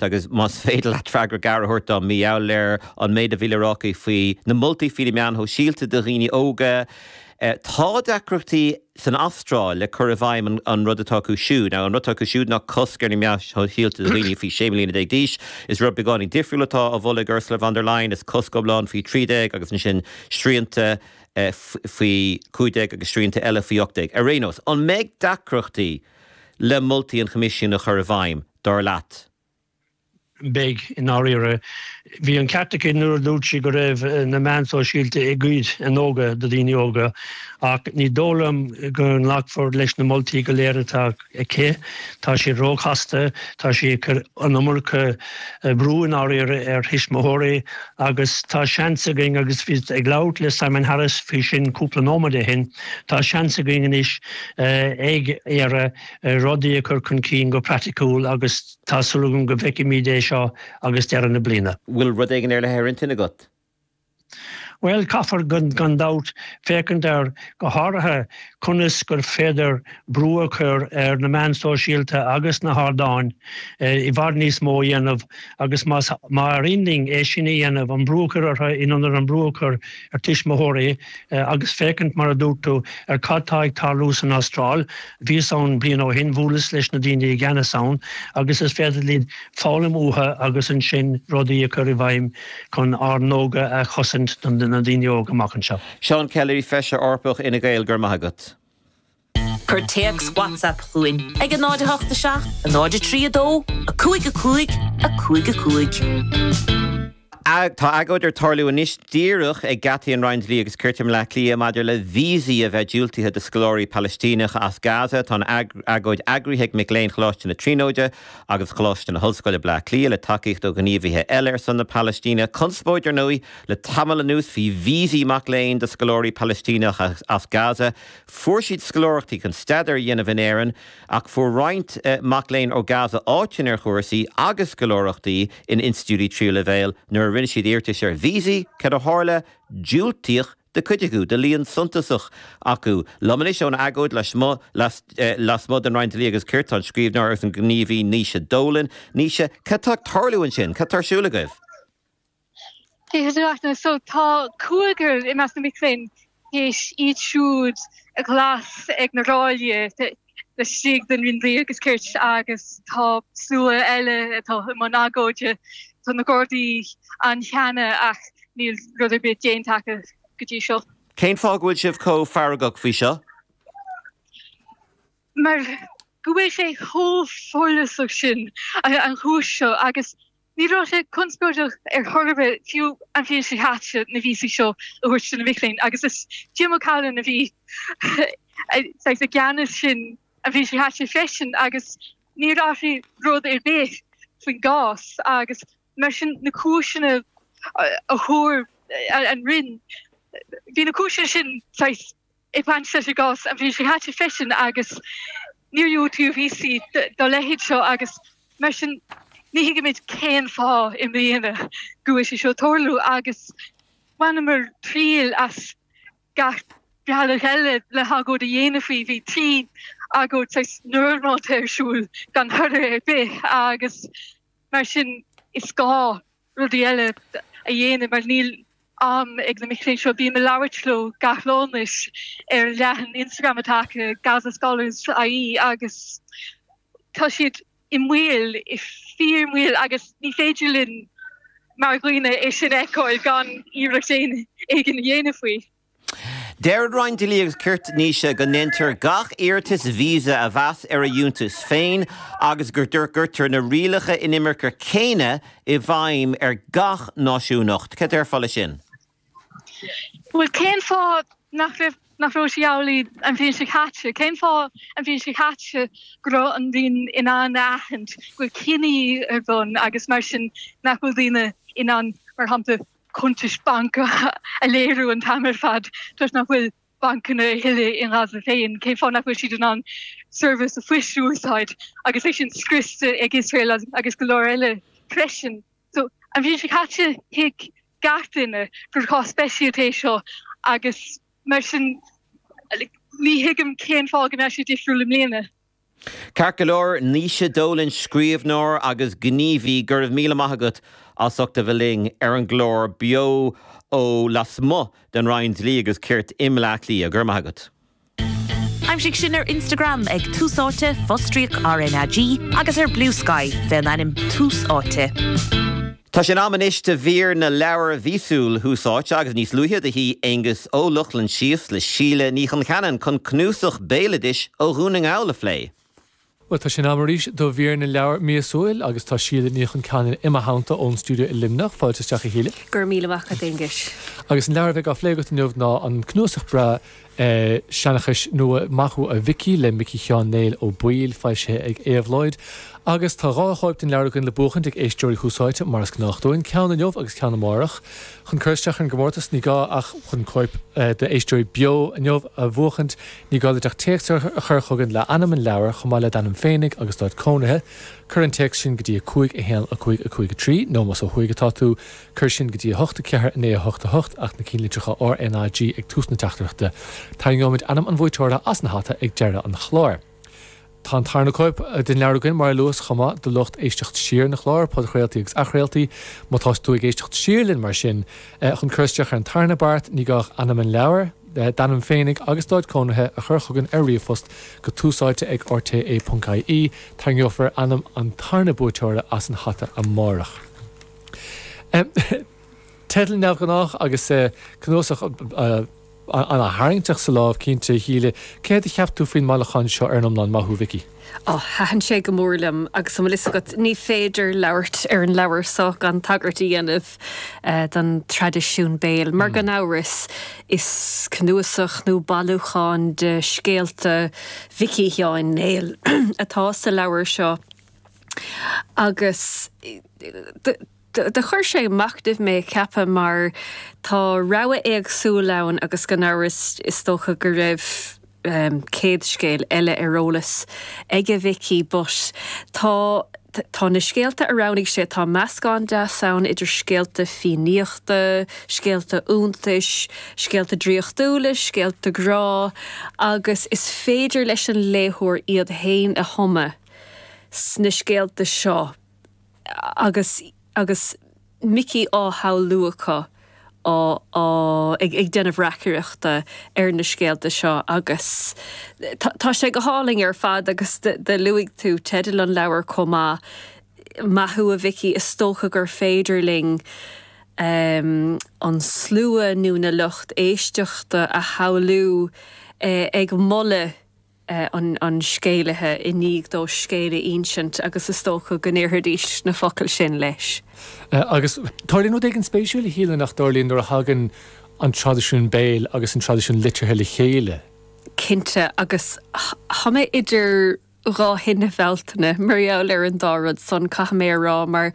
agus más féidir leat freagra gearr a thabhairt dom, más áil leat, ar an méid a bhí le rá aici faoi na moltaí faoi na meáin shóisialta do dhaoine óga, tá deacrachtaí san Astráil le cur i bhfeidhm an rud atá acu siúd. An rud atá acu siúd ná cosc ar na meáin shóisialta do dhaoine faoi sé mbliana déag d'aois. Is rud beagáinín difriúil atá á mholadh ag Ursula von der Leyen, is cosc iomlán faoi thrí déag agus ansin srianta faoi chúig déag agus srianta eile faoi ocht déag. Ar aon nós, an mbeidh deacrachtaí le moltaí an Choimisiúin a chur i bhfeidhm? dar leat? Beidh, i ndáiríre. Bhí an ceart aici nuair a dúirt sí go raibh na meáin shóisialta ag goid a n-óige ó dhaoine óga, ach ní dóigh liom go nglacfar leis na moltaí go léir atá aici. Tá siad róchasta, tá sí ag cur an iomarca brú, i ndáiríre, ar thuismitheoirí, agus tá seans againn, agus bhíos ag labhairt le Simon Harris faoi sin cúpla nóiméad ó shin, tá seans againn anois ag Éire, rudaí a chur chun cinn go praiticiúil agus tá súil agam go bhfeicfimid é seo roimh deireadh na bliana. Bhfuil rud éigin ar leith ar intinn agat? Bhuel, caithfear, gan dabht, féachaint ar, go háirithe, conas gur féidir brú a chur ar na meáin shóisialta agus na hardáin i bhfad níos mó a dhéanamh agus más féidir linn é sin a dhéanamh, an brú a chur orthu in ionad an brú a chur ar tuismitheoirí. agus féachaint, mar a dúirt tú, ar cad tá ag tarlú san Astráil. Bhíos ann bliain ó shin, bhuaileas leis na daoine i gceannas ann agus is féidir linn foghlaim uathu agus ansin rudaí a chur i bhfeidhm chun a n-óige a chosaint do na daoine óga, amach anseo. Seán Kelly, Feisire Eorpach Fhine Gael, Go raibh maith agat. Cuir téacs WhatsApp chugainn ag 08 7 03 2 5 5 5 5. Tá agóid ag tarlú anois díreach ag geataí an Roinn Dlí agus Cirt i mBleá Cliath maidir le víosaí a bheith diúltaithe do scoláirí Palaistíneacha as Gaza. Tá an agóid eagraithe ag mic léinn Choláiste na Tríonóide agus Choláiste na hOllscoile, Bleá Cliath, le tacaíocht ó ghníomhaithe eile ar son na Palaistíne. Conspóid, ar ndóigh, le tamall anuas faoi víosaí mac léinn do scoláirí Palaistíneacha as Gaza. Fuair siad scoláireachtaí chun staidéar a dhéanamh in Éirinn, ach fuair roinnt mac léinn ó Gaza áiteanna ar chúrsaí agus scoláireachtaí in institiúidí tríú leibhéil nuair a rinne siad iarratais ar víosaí. Cad a tharla? Diúltaíodh do chuid acu, do líon suntasach acu. Liom anois ón agóid lasmuigh den Roinn Dlí agus Cirt tá an scríbhneoir agus an gníomhaí Naoise Dolan. Naoise, cad tá ag tarlú ansin? Cad tá ar siúl agaibh? Tá cúigear i measc na mic léinn tar éis iad siúd a ghlasáil ag na ráillí laistigh den Roinn Dlí agus Cirt agus tá slua eile atá i mbun agóide. Tá na Gardaí ann cheana ach níl rud ar bith déanta acu go dtí seo. Cén fáth go bhfuil sibh chomh feargach faoi seo? Mar go bhfuil sé chomh follasach sin an chúis seo agus Ní raibh sé conspóideach ar chor ar bith fiú an bhliain seo caite na víosaí seo a thabhairt do na mic léinn, agus is Jim O'Callaghan a bhí i gceannas sin an bhliain seo caite freisin, agus níor athraigh rud ar bith faoin gcás, agus mar sin na cúiseanna a thug an Roinn, bhí na cúiseanna sin saghas. i mbaint leis an gcás an bhliain seo caite freisin agus níor diúltaíodh víosaí dá leithéid seo agus mar sin ní thuigimid cén fáth i mbliana go bhfuil sé seo ag tarlú agus bhaineamar triail as gach bealach eile le hagóid a dhéanamh faoi. Bhí trí agóid saghas normálta ar siúl gan toradh ar bith agus mar sin is gá. rudaí eile a dhéanamh mar níl am ag na mic léinn seo. Bím ag labhairt leo gach lá anois ar leathanach Instagram atá acu, Gaza Scholars IE, agus tá siad i mbaol, i bhfíor-mbaol, agus ní féidir linn mar dhaoine é sin a fheiceáil gan iarracht éigin a dhéanamh faoi. Deir an Roinn Dlí agus Cirt, Naoise, go ndéantar gach iarratas visa a mheas ar a fhiúntas féin agus go gcuirtear na rialacha inimirce céanna i bhfeidhm ar gach náisiúnacht. Cad déarfá leis sin? Bhuel, cén fáth nach raibh, nach raibh sé amhlaidh an bhliain seo caite? Cén fáth an bhliain seo caite go raibh an Roinn in ann a aithint go bhfuil cinedhíothú ar bun agus mar sin nach bhfuil daoine in ann, mar shampla, cuntais bainc a léiriú an t-am ar fad toisc nach bhfuil bancanna a thuilleadh i nGaza féin, cén fáth nach bhfuil siad in ann seirbhís phoist a úsáid agus é sin scriosta ag Iosrael agus go leor eile freisin. An bhliain seo caite thuig gach duine gur cás speisialta é seo agus mar sin ní thuigim cén fáth go mbeadh sé difriúil i mbliana. Ceart go leor, Naoise Dolan, scríobhneoir agus gníomhaí, go raibh míle maith agat as ucht a bheith linn ar an gclár beo ó lasmuigh den Roinn Dlí agus Cirt i mBleá Cliath. Go raibh maith agat. Aimsigh sinn ar Instagram ag Tús Áite, fostríoc RnaG, agus ar Bluesky, fén ainm Tús Áite. Tá sé in am anois do mhír na leabhar mhíosúil Thús Áite agus níos luaithe do shuí Aonghus Ó Lochlainn síos le Síle Ní Choncheanainn chun cnuasach béaloidis ó Dhún na nGall a phlé. Bhuel, tá sé in am arís do mhír na leabhar míosúil agus tá Síle Ní Choncheanainn i mo theannta ón stiúideo i Luimneach. Fáilte isteach, a Shíle. Go raibh míle maith agat, Aonghus. Agus an leabhar a bheidh á phlé agat inniu ná an cnuasach breá Seanchais Nua, Maith thú a Mhicí le Micí Sheáin Néill Ó Baoill, foilsithe ag Éabhlóid, agus tá dhá chóip den leabhar againn le buachaint ag éisteoirí Thús Áite, mar is gnách dúinn, ceann inniu agus ceann amárach. Chun cur isteach ar an gcomórtas, ní gá ach chun cóip d'Éisteoirí Beo inniu a bhuachaint. Ní gá duit ach téacs a chur chugainn le hainm an leabhair, chomh maith le d'ainm féinig agus d'áit cónaithe. Cuir an téacs sin go dtí 5 1 5 5 3, nó más ó thuaidh atá tú, Cuir sin go dtí 8, 0, 8, 8, 8, ach na ceannlitreacha R, N, A, G ag tús na teachtaireachta. Tarraingeoimid ainm an bhuaiteora as an hata ag deireadh an chláir. Tá an tarna cóip den leabhar againn, mar a luas, chomh maith, do lucht éisteacht siar na cláir, podchraoltaí agus athchraoltaí. Má tá tú ag éisteacht siar linn, mar sin, chun cur isteach ar an tarna beart, ní gá ach ainm an leabhair, d'ainm féinig agus d'áit cónaithe a chur chugainn ar ríomhphost go túsáite ag rte. ie. Tarraingeofar ainm an tarna buaiteora as an hata amárach. Teideal neamhghnách agus cnuasach an-tarraingteach sa lámh, cinnte. A Shíle, céard a cheap tú faoin mbailiúchán seo ar an iomlán? Maith thú a Mhicí. Oh, thaitin sé go mór liom agus an bhfuil fhios agat, ní féidir labhairt ar an leabhar seo gan tagairt a dhéanamh don traidisiún béil, mar gan amhras is cnuasach nó bailiúchán de scéalta Mhicí Sheáin Néill atá sa leabhar seo. Agus do chuir sé ag machnamh mé, ceapaim, mar tá rogha éagsúil ann agus gan amhras is dócha go raibh céad scéal eile ar eolas ag Micí but tá, tá na scéalta a roghnaigh sé, tá meascán deas ann idir scéalta Fiannaíochta, scéalta iontais, scéalta draíochtúla, scéalta grá agus is féidir leis an léitheoir iad féin a thumadh. sna scéalta seo agus agus Micí á shamhlú acu á á ag ag déanamh reacaireachta ar na scéalta seo agus tá tá sé go hálainn ar fad agus do do luaigh tú teideal an leabhair chomh maith Maith thú a Mhicí is dócha gur féidir linn ehm an slua nó na lucht éisteachta a shamhlú eh ag moladh an scéalaí i ndiaidh dó scéal a insint agus is dócha go ndéarfaidís na focail sin leis. Agus tarlaíonn rud éigin spéisiúil, a Shíle, nach dtarlaíonn nuair a thagann an traidisiún béil agus an traidisiún liteartha le chéile. Cinnte, agus táim idir dhá thine Bhealtaine mar gheall ar an dá rud san, caithfidh mé a rá, mar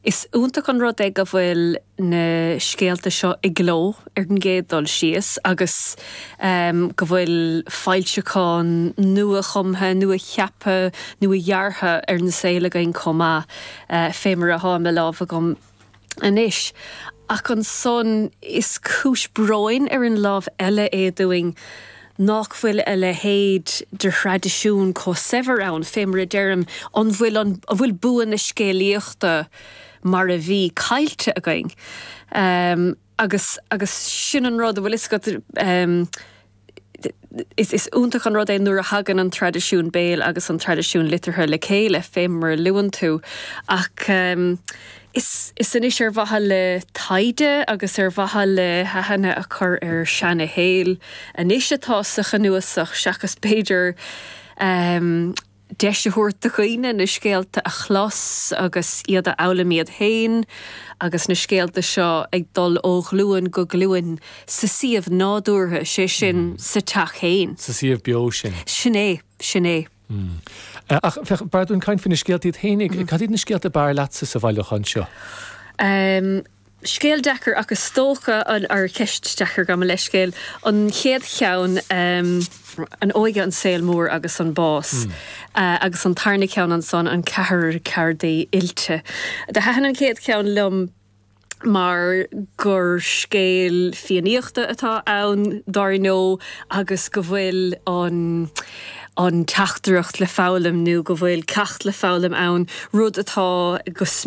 is iontach an rud é go bhfuil. na scéalta seo i gcló ar an gcéad dul síos agus go bhfuil foilseachán nua-chumtha, nua-cheaptha, nua-dheartha ar an saol againn chomh maith, fé mar atá i mo láimh agam anois. Ach ansan is cúis bróin ar an láimh eile é dúinn nách bhfuil a leithéid de thraidisiún chomh saibhir ann, fé mar a deirim, an bhfuil, an bhfuil bua na scéalaíochta, mar a bhí, caillte againn. Agus, agus sin an rud, bhfuil fhios agat, is, is iontach an rud é nuair a thagann an traidisiún béil agus an traidisiún liteartha le chéile, fé mar a luann tú. Ach is, is anois ar mhaithe le taighde agus ar mhaithe le haithne a chur ar seana-shaol anois atá sa chnuasach seachas b'fhéidir, deis a thabhairt do dhaoine na scéalta a chlos agus iad a fhoghlaim iad féin agus na scéalta seo ag dul ó ghlúin go glúin sa suíomh nádúrtha, sé sin, sa teach féin. Sa suíomh beo sin. Sin é. Sin é. Ach b'fhearr dúinn caint faoi na scéalta iad féin. Cad iad na scéalta ab fhearr leatsa sa bhailiúchán seo? Scéal deacair, ach is dócha, or ceist deacair, gabh mo leithscéal, an chéad cheann, an óige, an saol mór agus an bás, agus an tarna ceann ansan, an ceathrar ceardaí oilte. Do thaithin an chéad cheann liom mar gur scéal Fiannaíochta atá ann, dár ndó, agus go bhfuil an teachtaireacht le foghlaim nó go bhfuil ceacht le foghlaim ann, rud atá go smior.